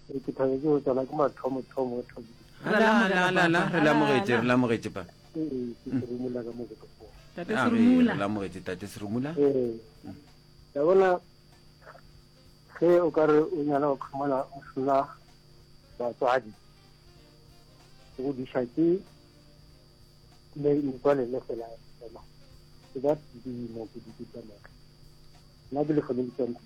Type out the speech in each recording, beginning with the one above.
Re ke thabe ke go tsena ke mathomo thomo e thomo. La la la la la re lamogetše re lamogetše pa. Ee, ke se rumula ka mo go tlo. Tate se rumula. Re lamogetše tate se rumula. Ee. Ya bona ge o ka re o nyala go khumana o sena batswadi go diša ke le metswalle le fela fela ke ba dimo ke di tsamaga nna ke le fele le tsantsi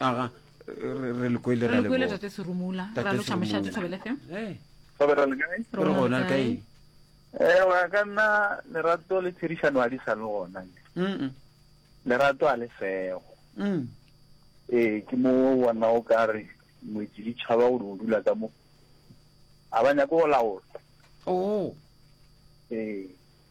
aga re le kwele ra leboga tate serumula ra loša mošate thobele fm re gona le kae ewa eh, ka nna lerato le tshedišano a di sa le gona lerato a le sego mm. ee ke mo bona o ka re moetsi ditšhaba gore o dula ka mo a ba nyako go laola oo oh. ee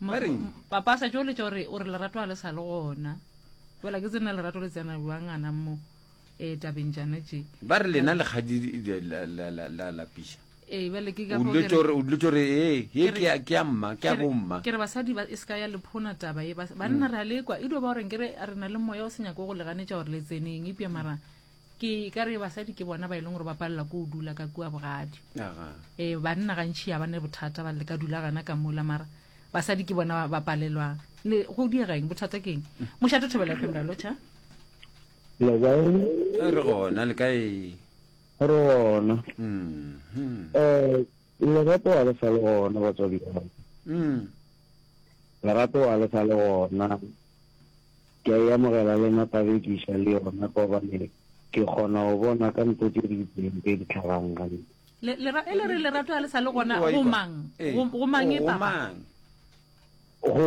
Ba reng? Papa a sa tšo letša gore gore lerato ga le sa le gona. Fela ke tsena lerato le tsena bjang gana mo eh, tabeng tšana tše. Ba re lena lekgadi le- la- la- la- la lapiša. Ee, bjale ke ka O fao dilo ke tšore- o dilo tšore ee, ye Ke re- ke ya- ke ya mma, ke ya Ke re- bomma. ke re basadi ba e se ka ya le phona taba e bas- banna re a lekwa e dio ba goreng ke re re na le moya o se nyako go le ganetša gore le tseneng epja mara ke ka re basadi ke bona ba e leng gore ba palela ko o dula ka kua bogadi ee eh, banna gantšhi ya ba ne bothata ba le ka dula gana ka mola mara basadi ke bona ba palelwang le go diegeng bothata keng mošate thobela femra locha re gona le kae re gona um lerato wa le sa le gona batswadi mm. lerato wa le sa le gona Ke a e amogela le nna Tabekiša le yona gobane ke kgona go bona ka nto tše di itseng tše di hlagang gantši. Le, le ra, e le re lerato ga le sa le gona Go a go ikwa. mang? Ee. Go, go mang e, Go Papa? mang? Go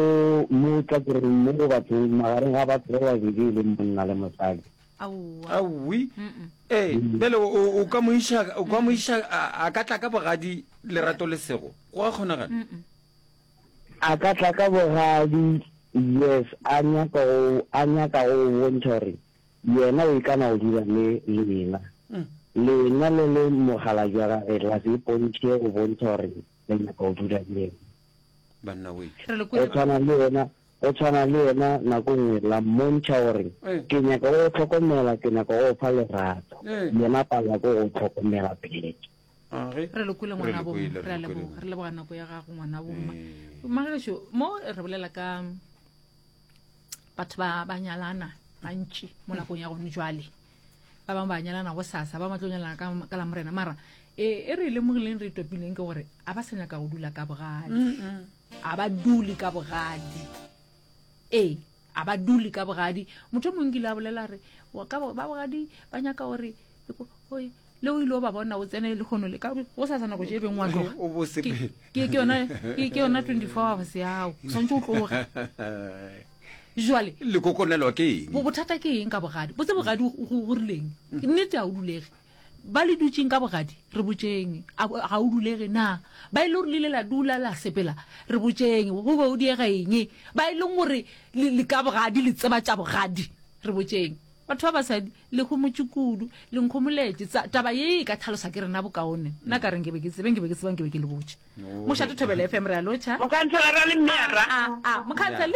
mo tlakereng mo go bathong, magareng ga batho ba babedi e leng monna le mosadi. Aowa. Aowi. Mm-mm. Ee, bjale o, o, o ka mo iša, o ka mo iša, a, a ka tla ka bogadi lerato le sego? Go a kgonagala? Mm-mm. A ka tla ka bogadi, yes, a nyaka go, a nyaka go go bontšha gore Yena o ikana go dula le lena. Lena le le mogala jwa Gage, la se ipontšhe go bontšha gore le nyaka go dula le Yena. Banna we. Re le Go kwele ba. tshwana le Yena, go tshwana le Yena nako nngwe la mmontšha gore, Ee. Ke nyaka go go tlhokomela, ke nyaka go go fa lerato. Ee. Yena a palelwa ke go go tlhokomela peleke. Ah, ge? re lokwile Re ngwana lokwile, bomma re re a lokwile. leboga re leboga nako ya gago ngwana bomma Eh. magaešo mo re bolela ka batho ba ba nyalana gantši mo nakong ya gone jwale ba bangwe ba nyalana go sasa ba bangwe ba tlo nyalana ka ka lamorena mara e e re e lemogileng re e topileng ke gore a ba sa nyaka go dula ka bogadi a ba dule ka bogadi ee A ba dule ka bogadi. Motho yo mongwe kile a bolela re, ka ba bogadi ba nyaka gore le o ile o ba bona o tsene le kgono le ka go sa sana go je beng wa tloga o bo se ke ke yona ke yona 24 hours yao santse o tloga jwale le kokonelo ke eng bo bothata ke eng ka bogadi botse bogadi go rileng nnete a o dulege Ba le dutšeng ka bogadi? Re botšeng. A ga o dulege na? Ba e le gore le ile la dula la sepela? Re botšeng. Go be o diega eng? Ba e leng gore le, le ka bogadi, le tseba tša bogadi? Re botšeng. Batho ba basadi, le homotše kudu, le nkhomoletše. Tsa, taba ye e ka tlhalosa ke rena bokaone. Nna ka re nke be ke tsebe, nke be ke tseba, nke be ke le botše. Mošate Thobela FM, re a lotšha. Mokhanselara le Mme Arra. A, a, a, Mokhanselara.